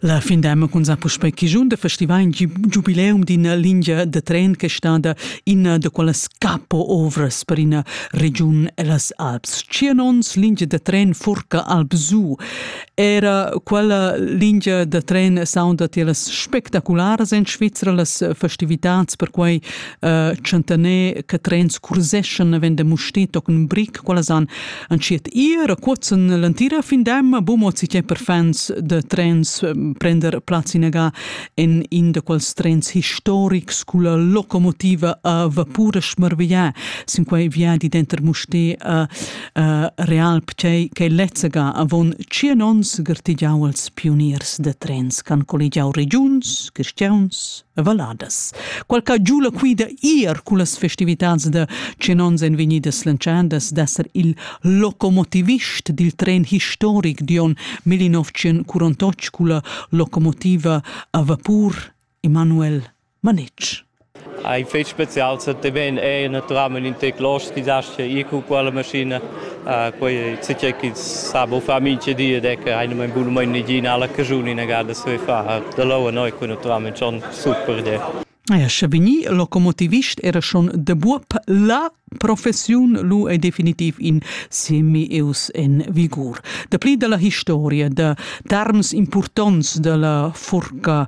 La fin d'emma cun sa puspei chigiun de festival in giubileum d'ina lingia de tren che stada ina de quellas capo ovras per ina regiun ellas Alps. Tschien ons lingia de tren Furca Alpsu. Era quella lingia de tren saunda tiellas spectacularas en Svizzera las festivitats per quei uh, eh, centener che trens curseschan vende mustito con brick, quella san Entschiet ir a cuozzen l'entira findem bumo si che per fans de trens prender plaz inaga en in de quals trens historics culla locomotiva a vapura schmarvia sin quei viadi denter Musté a Realp che che lezzega avon tschien ons gartigiau als pioniers de trens can collegiau regiuns, cristians valadas. Qualca giula quida ir cun las festivitads da Chenons en vegnidas lantschandas d'esser il locomotivist dil tren historic Dion 1948 con la locomotiva a vapur Emanuel Manetsch. Ein fest spezial se te ven è naturalmente in tec los disastri i cu quella maschina quei tgei ch'ins sa bu far mintga di ed è che hai num bunamein niginala casciun inagada se far da lou noi cun naturalmein schon super idea. Ja, sche vegni locomotivist era schon de buob la professiun lu è definitiv in semi eus en vigur. Da pli dalla historia, da terms impurtonts dalla furca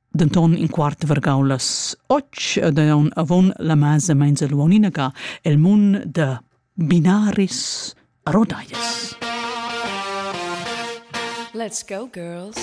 denton in quart vargau las och daun avon la masa meins el uoninaga el mun da binaris rodaias Let's go girls